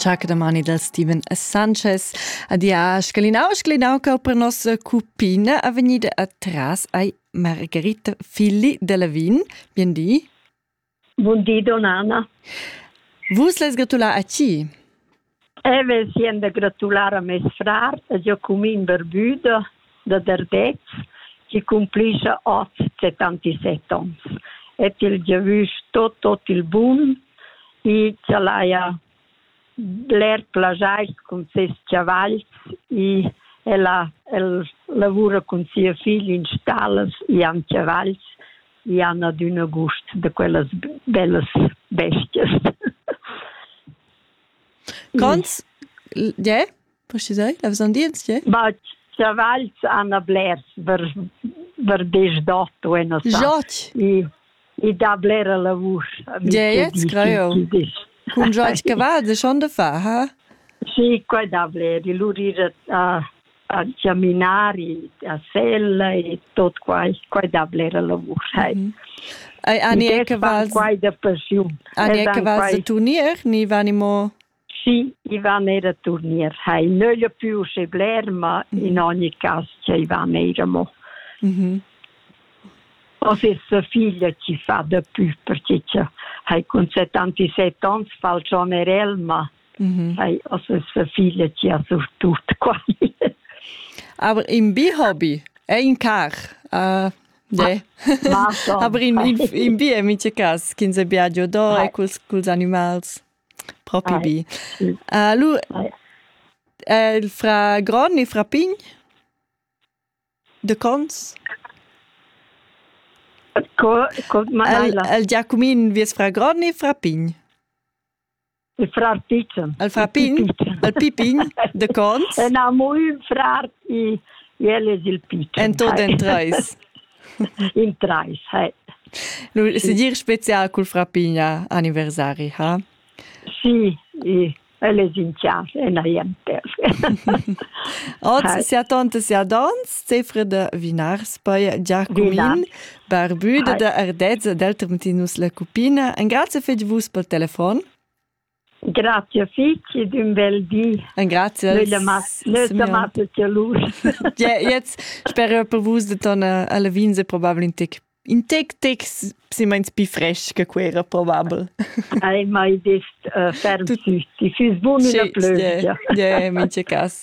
Ciaca domani dal Steven Sanchez. Adia, scalinau, scalinau che per nostra cupina a venida atras ai Margherita Filli della Vin. Biendi. Buondì, Donnana. Vus les gratulà a chi? E ve sien da gratular a mes frar, a Giacumin Berbuda da Derdez, chi cumplischa hoz 77 ons. E til giavüsch tot, tot il bun e ch'el haja bler plagiais cun ses chavals e ella el lavura cun sia figl in stallas e han chavals e han adüna gust da quellas bellas bestias. Cons? Tge? Precisai, la vesan dir, tge? Ba, chavals han blers per, per desdotto e non sa. Jot? I, i dà blera la vusch. Tge, scraio? Cun jot cavals e schon da fa, ha? Sì, qua dà bler. I lur ir a, examinari da sella e tot quai, quai da blera lavur. Hey. Mm -hmm. Ai ani e cavals quai da passiun. Ani e cavals da turnier, ni vani mo Sì, Ivan era turnier. Hai nöglia più se bler, ma mm -hmm. in ogni caso c'è Ivan era mo. Mm -hmm. O se sua figlia ci fa da più, perché hai con 77 anni fa il John Erel, ma Ei also es für viele gia so tut quali. Aber im Bi-Hobby, ein car. Uh, de. Aber in, in, in bi è mince cas ch'ins è viaggio do e culs, culs animals. Propi bi. Uh, lu, uh, il fra gron e fra pign? De cons? Co, co, el, el Giacumin vies fra gron e fra pign? Il frar Picen. Il frar Pin? Il Pipin de Cons? En amo ün frar e el es il Picen. En tot en trais. In trais, hey. Lu se dir spezial cul frar Pin a anniversari, ha? Sì, e el es in chasa, en aiem Oz sia tante sia dons, Zefre de Vinars, poi Giacumin, Barbü da Ardezza dal Tremtinus la Cupina. Engrazia fetg vus pel telefon. Grazie figli d'un bel di. Grazie. Nötamate tia luce. Jetzt spero per vus de torna alla Vinze probabile in tec in tec tec si meins pi fresh che quera probabel. Ai mai dist uh, ferm sü, ti füs bun una plövia. Ja, ja, in ce cas.